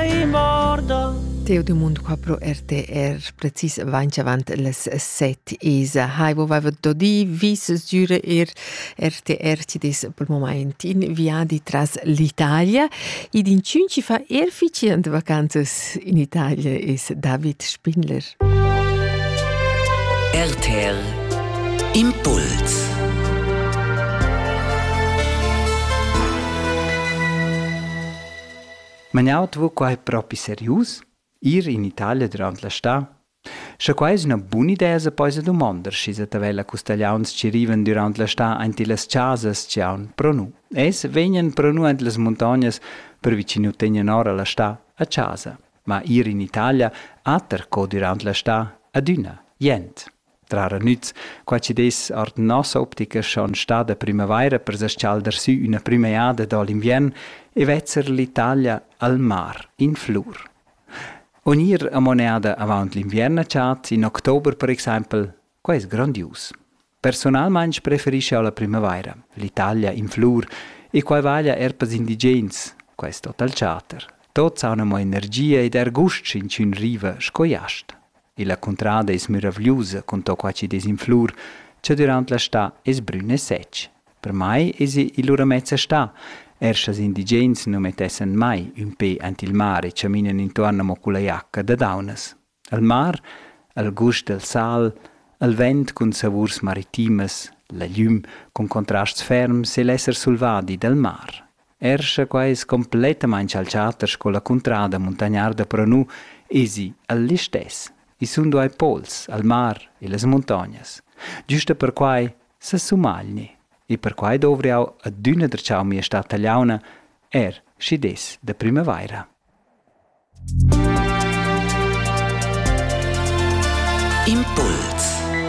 Ei morda. Teo dumund qua pro RTR precis avanti avant les set isa. Hai, wo vava dodi vis giure er RTR ci des per moment in viadi tras l'Italia. Id in cinci fa er ficient vacanzas in Italia is David Spindler. RTL Impuls Ma jau vo quai propi serius? Ir in Italia durant la stà? Sche quai es üna bun'idea sa poisa dumander schi sa tavella custagliauns chi rivan dürant la stà aint illas chasas ch'eaun pro nu. Es vegnan pro nu ant las muntognas per vi chi nu tegnan ora la stà a chasa. Ma ir in Italia ater co dürant la stà adüna jent. Trara nüz, qua chi dess our da nossa optica schon stada primavaira per s-chalder sü üna prüm'eada da l'inviern e vezzer l'Italia al mar in flur. O gnir amoneada avaunt l'inviern a chat in october per exaimpel, quai es grandius. Personalmaing preferischa la primavaira l'Italia in flur e quai vaglia er pels indigens, quai es tot al chatter. Tot s'ha amo energia ed er gust sch'inchün riva sco jast. e la cuntrada es müravgliusa cun to qua chi'd es in flur, cha dürant la stà es brün e sech. Per mai esa il ura mezza stà. Er schas indigens nu mettessan mai ün pe aint il mar e chaminan intuorn amo culla giacca da daunas. Al mar, al gust del sal, al vent cun savurs maritimas, la glüm cun contrasts ferms e l'esser sulvadi dal mar. Er sche quai es cumplettamaing chalchata sco la cuntrada muntagnarda però nu, esi el listess. I sun duai pols, al mar e las muntognas. Giusta perquai sa sumagli. E perquai dovr jau adüna der chau mia stad tagliauna, er schi des da primavaira. Impuls